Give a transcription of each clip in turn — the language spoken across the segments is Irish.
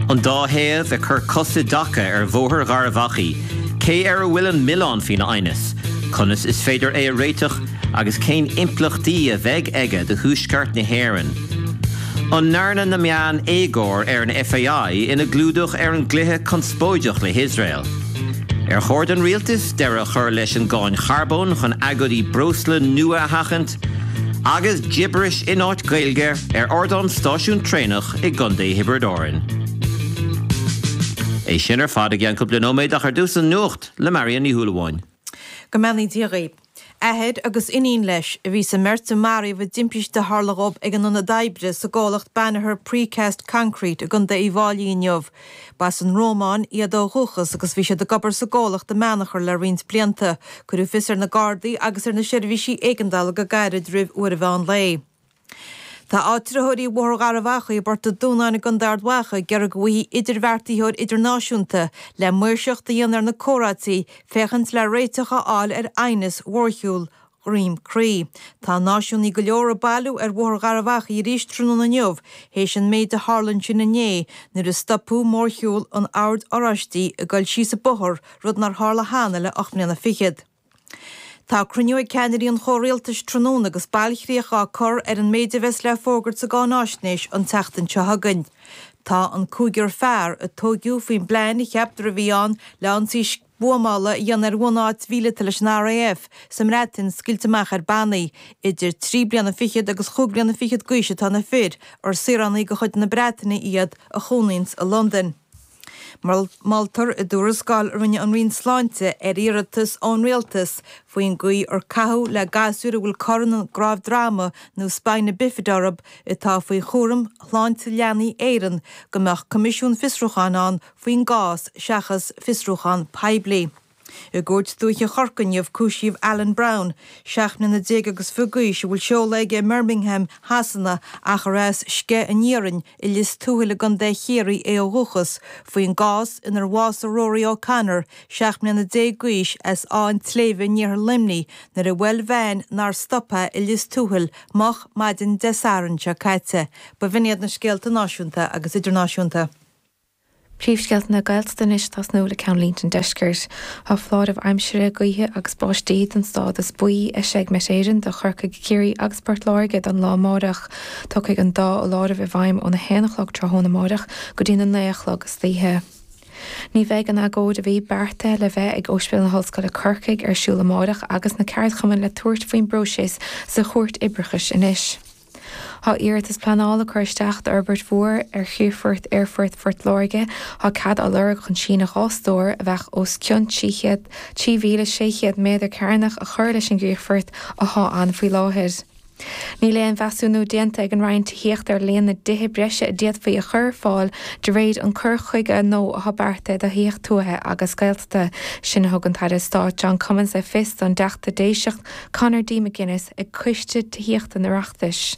An dá thaobh ag cur cos i dtaca ar Bhóthar Gharbh Achaidh, cé air a bhfuil an milleán faoin aighneas, conas is féidir é a réiteach agus cén impleachtaí a bheidh aige do Thuaisceart na hÉireann? An ndearna na meáin éagóir ar an FAI ina gclúdach ar an gcluiche conspóideach le hIosrael? Ar chóir don rialtas deireadh a chur leis an gcáin charbóin chun agóidí breosla nua a sheachaint? Agus gibberish in áit Gaeilge ar ardán stáisiún traenach i gContae Thiobraid Árann. É sin ar fad i gceann cúpla nóiméad ach ar dtús an nuacht le Marion Ní Shúilleabháin. Go mbeannaí Dia dhaoibh. Athair agus iníon leis a bhí sa mbeirt a maraíodh i dtimpiste a tharla dhóibh ag a n-ionad oibre sa gcomhlacht Banagher Precast Concrete i gContae Uíbh Fháilí inniu Ba as an Rómáin iad ó dhúchas agus bhí siad ag obair sa gcomhlacht i mBeannchar le roinnt blianta. Cuireadh fios ar na Gardaí agus ar na seirbhísí éigeandála go gairid roimh uair an mheán lae. Tá áitritheoirí Bhóthar Gharbh Achaidh i bPort a' Dúnáin i gContae Ard Mhacha ag iarraidh go bhfaighfí idirbheartaitheoir idirnáisiúnta, le maoirseacht a dhéanamh ar na comhráití, féachaint le réiteach a fháil ar aighneas mhórshiúl Dhroim Crí. Tá náisiúnaithe go leor ag bailiú ar Bhóthar Gharbh Achaidh arís tráthnóna inniu théis an méid a tharla ansin inné nuair a stopadh mórshiúl an Oird Oráistigh ag dul síos an bóthar, rud nár tharla cheana le ocht mbliana fichead. Tá cruinniú ag ceannairí an chomhrialtais tráthnóna agus bailchríoch á cur ar an méid a bheas le fógairt sa gcáináisnéis an tseachtain seo chugainn. Tá an cúigear fear a tóigeadh faoin bplean a cheaptar a bhí ann le ionsaí Buamála a dhéanamh ar bhunáit mhíleata leis an RAF sa mBreatain scaoilte amach ar bannaí. Idir trí bliana fichead agus chúig bliana fichead d'aois atá na fir, ar saoránaigh de chuid na Breataine iad, a chónaíonns i Londain. Moltar i dtuarascáil a rinne an Roinn Sláinte ar iarratas ón Rialtas faoin gcaoi ar caitheadh le gasúir a bhfuil cor ina gcnámh droma nó spina bifida orthu atá faoi chúram Shláinte Leanaí Éireann go mbeadh coimisiún fiosrúcháin ann faoin gcás seachas fiosrúchán poiblí. I gCúirt Dúiche Chorcaí inniu cúisíodh Alan Brown, 17 mbliana agus fiche d'aois, a bhfuil seoladh aige i mBirmingham Shasana ach ar as Sceich an Iarainn i Lios Tuathail i gContae Chiarraí é ó dhúchas, faoin gcás inar bhásaigh Rory O'Connor, 17 mbliana d'aois, as Áth an tSléibhe in iarthar Luimnigh nuair a bhuail veain nár stop é i Lios Tuathail moch maidin Dé Sathairn seo caite. B'in iad na scéalta náisiúnta agus idirnáisiúnta. Príomhscéalta na Gaeltachta anois, tosnú le ceannlínte an Deiscirt, Tá foláireamh aimsire, gaoithe agus báistí don stádas buí eisithe ag Met Éireann do Chorcaigh, Ciarraí agus Port Láirge don lá amáireach. Tiocfaidh an dá fholáireamh i bhfeidhm ón 1 a chlog tráthnóna amáireach go dtí na 9 a chlog istoíche. Ní bheidh an agóid a bhí beartaithe le bheith ag Ospidéal na hOllscoile Corcaigh ar siúl amáireach agus na ceardchumainn le tabhairt faoin bpróiseas sa Chúirt Oibreachais anois. Tá iarratas pleanála curtha isteach d'fhorbairt mhór ar chríochfort Aerfort Phort Láirge. Tá cead á lorg chun síneadh dhá stór, a bheadh os cionn 3,600 méadar cearnach, a chur leis an gcríochfort athá ann faoi láthair. Níl aon mheasúnú déanta ag an Roinn Tithíochta ar líon na dtithe breise a d'fhéadfaí a chur ar fáil de réir an cur chuige nua athá beartaithe do thithíocht tuaithe agus Gaeltachta. Sin a thug an tAire Stáit John Cummins le fios don Teachta Déiseach, Conor D. McGuinness ag Coiste Tithíochta an Oireachtais.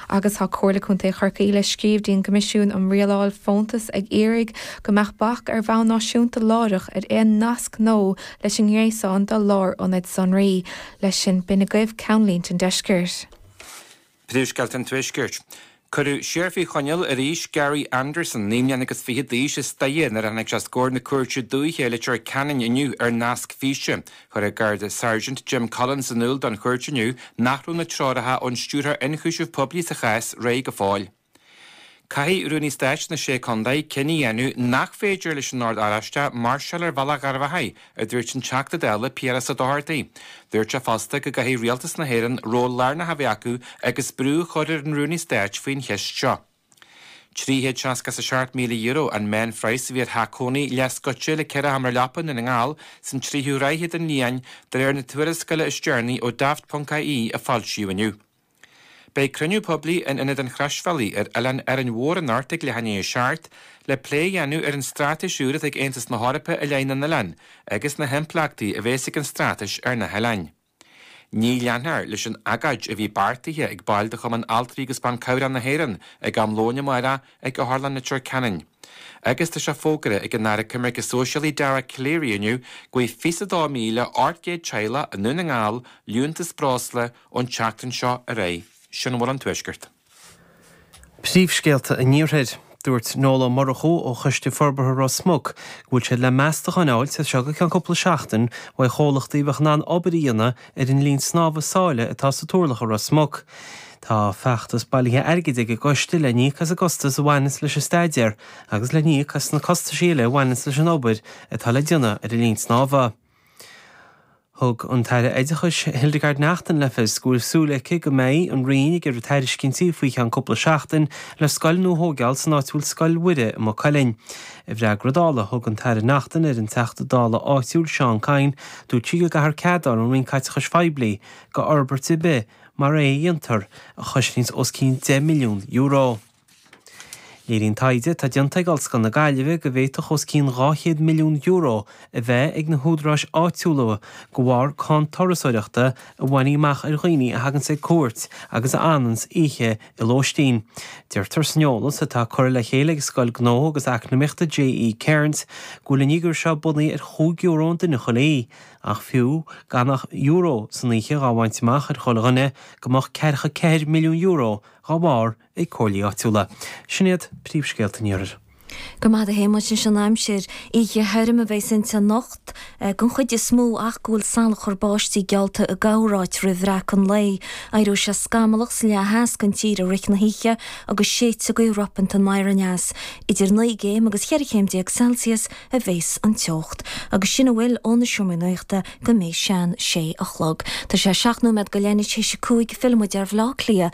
Agus tá Comhairle Contae Chorcaí le scríobh dtí'n gCoimisiún um Rialáil Fóntas ag iarraidh go mbeadh bac ar bhonn náisiúnta láithreach ar aon nasc nua leis an ngréasán de lárionaid sonraí, leis sin b'in agaibh ceannlínte an Deiscirt. Príomhscéalta an Tuaiscirt. Cuireadh siar faoi choinneáil arís Gary Anderson, naoi mbliana agus fiche d'aois, as Doire nuair a tháinig sé os comhair na cúirte dúiche i Leitir Ceanainn inniu ar nasc físe. Chuir an Gardasháirsint Jim Collins in iúl don chúirt inniu nach raibh na treoracha ón Stiúrthóir Ionchúiseamh Poiblí sa chás réidh go fóill. Caithfidh Rúnaí Stáit na Sé Chondae cinneadh a dhéanamh nach féidir leis an Ord Oráiste máirseáil ar Bhealach Gharbh Achaidh, a dúirt an Teachta Dála Piaras Ó Dochartaigh. Dúirt sé fosta go gcaithfidh Rialtas na hÉireann ról lárnach a bheith acu agus brú a chur ar an Rúnaí Stáit faoin cheist seo. €367,000 an meánphraghas a bhí ar theach cónaí leathscoite le ceithre sheomra leapa i nDún na nGall san tríú ráithe den bhliain, de réir na tuarascála is deireanaí ó Daft. ie, a foilsíodh inniu. Beidh cruinniú poiblí in Ionad an Chroisbhealaigh ar Oileán Árainn Mhór anóirthear le Cynthia Ní Mhurchú le plé a dhéanamh ar an straitéis úr atá ag Aontas na hEorpa i leith na n-oileán agus na himpleachtaí a bhéas ag an straitéis ar na hoileáin. Ní leanfar leis an agóid a bhí beartaithe ag baill de Chumann Altraí agus Ban Cabhrach na hÉireann ag am lóin amárach ag Otharlann Leitir Ceanainn agus tá sé fógartha ag an Aire Coimirce Sóisialaí Dara Calleary inniu go bhfaighidh fiche sé mhíle ocht gcéad teaghlach i nDún na nGall liúntas breosla Ón tseachtain seo ar aghaidh, sin a bhfuil ón Tuaisceart. Príomhscéalta an Iarthair. Dúirt Noel Ó Murchú ó Choiste Forbartha Ros Muc go bhfuil siad le meastacháin a fháilt as seo go ceann cúpla seachtain uaidh chomhlachtaí a bheadh in ann obair a dhéanamh ar an linn snámha sáile atá sa Túrlach i Ros Muc. Tá feachtas bailithe airgid ag an gCoiste le n-íoc as an gcostas a bhaineas leis an staidéar agus le n-íoc as na costaisí eile a bhaineas leis an obair atá le déanamh ar an linn snámha. Thug an tAire Oideachais Hildegarde Naughton le fios go bhfuil súil aici go mbeidh an Roinn ag iarraidh tairiscintí faoi cheann cúpla seachtain le scoil nua a thóigeáil san áit a bhfuil Scoil Mhuire i Maigh Cuilinn. I bhfreagra Dála a thug an tAire Naughton ar an Teachta Dála áitiúil Seán Kyne, dúirt sí go gcaithfear cead a fháil ón Roinn Caiteachais Phoiblí go fhorbairt ar bith mar é a mheastar a chosnós os cionn €10 milliún. Léiríonn taighde atá déanta ag Ollscoil na Gaillimhe go bhféadfadh os cionn €200 milliún a bheith ag na húdaráis áitiúla de bharr cáin turasóireachta a bhainfí amach ar dhaoine a thaganns ag cuairt agus a fhananns oíche i lóistín. Deirtear san eolas atá curtha le chéile ag Scoil Gnó agus Eacnamaíochta JE Cairnes go bhfuil an figiúr seo bunaithe ar chúig euro an duine chuile oíche ach fiú gan ach euro san oíche dhá bhaint amach ar chuile dhuine go mbeadh ceathracha ceathair milliún euro dhá bharr ag comhairlí áitiúla. Sin iad príomhscéalta an iarthair. Go raibh maith agat a Shéamuis, anois an aimsir oíche thirim a bheas inti anocht den chuid is mó ach go bhfuil salachar báistí geallta i gcorráit roimh bhreacadh an lae. Éireoidh sé scamallach sa leath theas den tír i rith na hoíche agus séidfidh gaoth ropánta anoir aneas. Idir naoi gcéim agus cheithre chéim déag Celsius a bheas an teocht. Agus sin a bhfuil ó na Seomraí Nuachta go mbeidh sé an sé a chlog. Tá sé seacht nóiméad go leith anois théis a cúig. Fillfidh muid ar Bhleá Cliath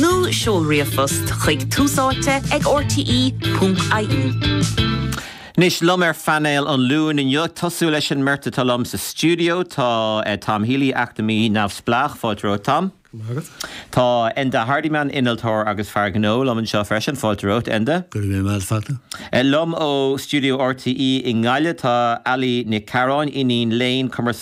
nó seol ríomhphost chuig túsáite ag rte.ie. Anois liom ar phainéal an Luain inniu, ag tosú leis an mbeirt atá liom sa stiúideo, tá Tom Healy, eacnamaí neamhspleách, fáilte romhat Tom. Go raibh maith agat. Tá Enda Hardiman, innealtóir agus fear gnó, liom anseo freisin, fáilte romhat Enda. Go raibh míle maith agat. Liom ó stiúideo RTÉ i nGaillimh, tá Ali Nic Carráin, iníon léinn,